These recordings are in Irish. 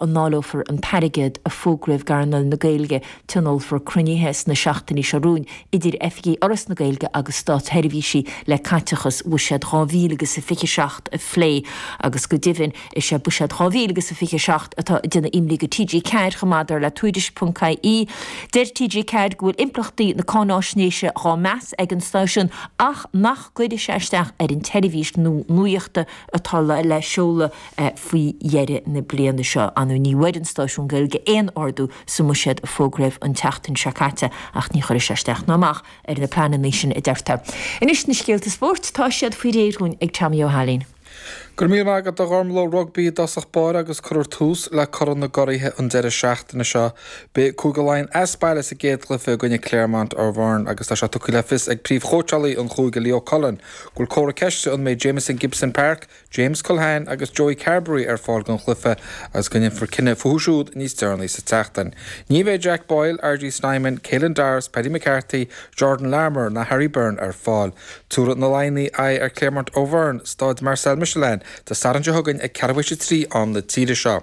a ndáileofar an t-airgead a fógraíodh d'earnáil na Gaeilge, tionólfar cruinnithe sna seachtainí seo romhainn idir oifigigh Fhoras na Gaeilge agus státsheirbhísí le caiteachas Bhuiséad 2027 a phlé agus go deimhin is é Buiséad 2027 atá ag déanamh imní do TG4 chomh maith, dar le Tuairisc.ie. Deir TG4 go bhfuil impleachtaí na cáinaisnéise dhá meas ag an stáisiún ach nach gcuirfidh sé isteach ar an tseirbhís nuachta atá le seoladh. faoi dheireadh na bliana seo. Anne, Ní bhfuair an stáisiún Gaeilge aon ardú sa mbuiséad a fógraíodh an tseachtain seo caite ach ní chuirfidh sé isteach ná amach ar na pleananna sin, a deirtear. Anois na scéalta spóirt, tá siad faoi réir dúinn ag Tommy Ó hAilín. Go raibh míle maith agat a Ghormlaith. Rugbaí i dtosach báire agus cuirfear tús le Corn na gCuraithe an deireadh seachtaine seo. Beidh Cúige Laighean as baile sa gcéad chluiche i gcoinne Clermont Auvergne agus tá sé tugtha le fios ag príomhchóitseálaí an chúige Leo Cullen go bhfuil comhartha ceiste an mbeidh Jamison Gibson Park James Culhane agus Joey Carbery ar fáil don chluiche agus go ndéanfar cinneadh fúthu siúd níos deireanaí sa tseachtain. Ní bheidh Jack Boyle, RG Snyman, Caelan Doris, Paddy McCarthy, Jordan Larmour ná Harry Byrne ar fáil. Tabharfaidh na Laighnigh aghaidh ar Clermont Auvergne, staid Marcel Michelin, Dé Sathairn seo chugainn ag ceathrú théis a trí am na tíre seo.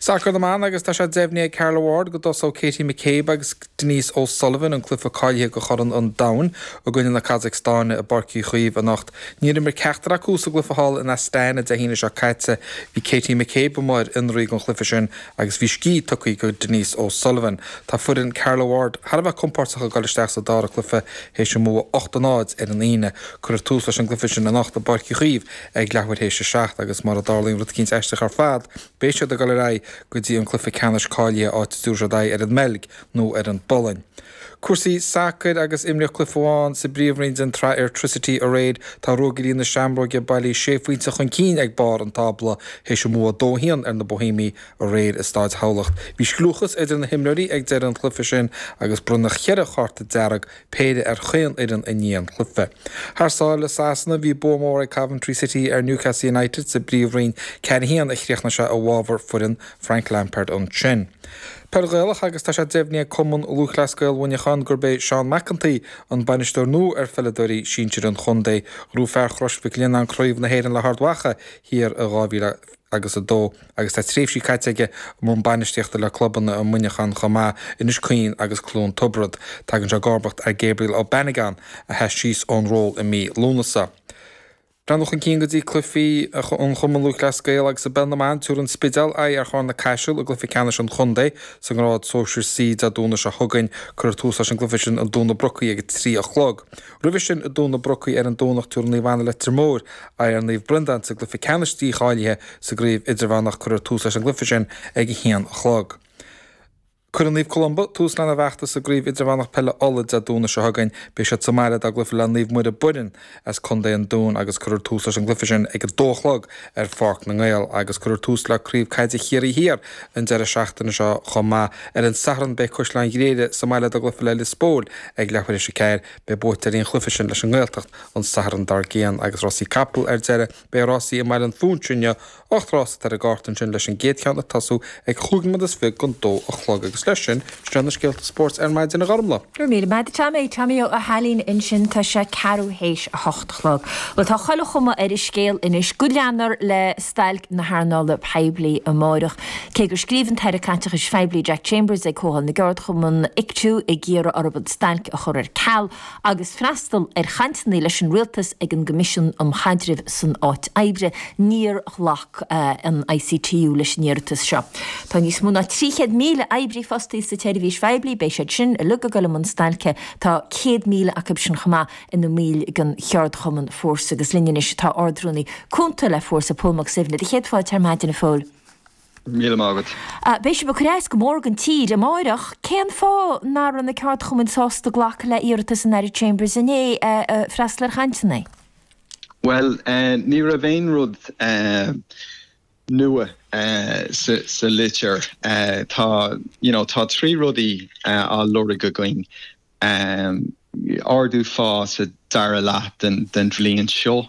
Sacar na mBan agus tá sé deimhnithe ag Carla Ward go dtosóidh Katie McCabe agus Denise O'Sullivan an cluiche cáilithe go Chorn an Domhain i gcoinne na Cazacstáine i bPáirc Uí Chaoimh anocht. Níor imir ceachtar acu sa gcluiche thall in Astana Dé hAoine seo caite. Bhí Katie McCabe mar ionadaí don chluiche sin agus bhí scíth tugtha go Denise O'Sullivan. Tá foireann Carla Ward thar a bheith compóirteach ag dul isteach sa dara cluiche théis a mbua ocht a náid ar an Aoine. Cuirfear tús leis an gcluiche sin anocht i bPáirc Uí Chaoimh ag leathuair théis a seacht agus mura dtarlaíonn rud eicínt aisteach ar fad, beidh siad ag dul ar aghaidh go dtí an cluiche ceannais cáilithe áit a dtabharfaidh siad aghaidh ar an mBeilg nó ar an bPolainn. Cúrsaí sacair agus imríodh cluiche amháin sa bpríomhroinn den tsraith Airtricity aréir, tá Ruagairí na Seamróige bailithe sé phointe chun cinn ag barr an tábla théis a mbua dó haon ar na Bóihéamaigh aréir i Staid Thamhlacht. Bhí scliúchas idir na himreoirí ag deireadh an chluiche sin agus bronnadh cheithre chárta dearg péire ar chaon fhoireann i ndiaidh an chluife. Thar sáile i Sasana, bhí bua mór ag Coventry City ar Newcastle United sa bPríomhroinn 4 1 a chríochnaigh sé i bhfabhar foireann Frank Lampard ansin. Peil Ghaelach agus tá sé deimhnithe ag Cumann Lúthchleas Gael Mhuineacháin gurb é Seán McEntee an bainisteoir nua ar pheileadóirí sinsir an chontae. Ghnóthaigh fear Chrois Mhic Lionnáin Craobh na hÉireann le hArd Mhacha thiar i 2000. agus 2, agus tá tréimhsí caite aige i mbun bainistíochta le clubanna i Muineachán chomh maith, Inis Caoin agus Cluain Tiobrad. Tagann sé i gcomharbacht ar Gabriel O'Bannigan, a sheas síos ón ról i mí Lúnasa. Breathnú chun cinn go dtí cluichí an Chumainn Lúthchleas Gael agus i bPeil na mBan, tabharfaidh an Spidéal aghaidh ar Chárna Caiseal i gcluiche ceannais an chontae sa ngrád sóisir C. Dé Domhnaigh seo chugainn, cuirfear tús leis an gcluiche sin i dTóin na Brocaí ag a trí a chlog. Roimhe sin i nDomhnach Broc ar an Domhnach tabharfaidh Naomh Anna Leitir Móir aghaidh ar Naomh Breandán sa gcluife ceannais dícháilithe sa gcraobh idirmheánach Cuirfear tús leis an gcluife sin ag a haon a chlog. Cuirfidh Naomh Columba tús lena bhfeachtas sa gcraobh idirmheánach peile Uladh Dé Domhnaigh seo chugainn beidh siad sa mbaile dá gcluife le Naomh Muire Boireann as Contae an Dúin agus cuirfear tús leis an gcluife sin ag a dó a chlog ar Pháirc na nGael agus cuirfear tús le Craobh Caide Chiarraí Thiar an deireadh seachtaine seo chomh maith. Ar an Satharn beidh Caisleán Ghriaire sa mbaile dá gcluife le Liospóil ag leathuair théis a ceathair. Beidh buaiteoirí an chluife sin leis an nGaeltacht an Satharn dár gcionn agus Rásaí Capall ar deireadh. Beidh rásaí i mBaile an Phúinsigh inniu. Ocht rás atá ar an gcárta ansin leis an gcéad cheann ag tosú ag cúig nóiméad is fiche gon dó a chlog agus leis sin, sin iad na scéalta spóirt ar maidin a Ghormfhlaith. Go raibh míle maith agat a Tommy. Tommy Ó hAilín ansin tá sé ceathrú théis a hocht a chlog. Bhuel, tá chuile chuma ar an scéal anois go leanfar le stailc na hearnála poiblí amárach. Cé gur scríobh an tAire Caiteachais Phoiblí Jack Chambers ag Comhdháil na gCeardchumann, Ictu, ag iarraidh orthu an stailc a chur ar ceal, agus freastal ar chainteanna leis an Rialtas ag an gCoimisiún um Chaidreamh san Áit Oibre, níor ghlac an ICTU leis an iarratas seo. Tá níos mó ná 300,000 oibrí fostaithe sa tseirbhís phoiblí, beidh siad sin uilig ag dul i mbun stailce, tá 100,000 acu sin chomh maith ina mbaill den cheardchumann Fórsa agus linn anois tá Ardrúnaí cúnta le Fórsa, Pól Mac Suibhne, céad fáilte ar Maidin, a Phóil. Go raibh míle maith agat. Beidh sibh ag cur as go mór don tír amáireach. Cén fáth nach raibh na ceardchumainn sásta glacadh le iarratas an Aire Chambers inné freastal ar chainteanna? Bhuel, ní raibh aon rud nua sa litir. Tá, you know, tá trí rudaí á lorg againn. Ardú phá sa dara leath den bhliain seo,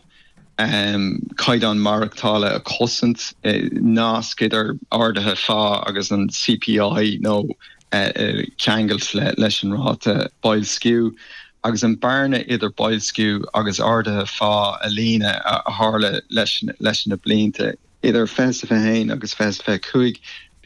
caighdeán maireachtála a chosaint, nasc idir arduithe phá agus an CPI nó ceangailt leis an ráta boilsciú, agus an bearna idir boilsciú agus arduithe phá a líonadh a tharla le leis na blianta idir 2021 agus 2025.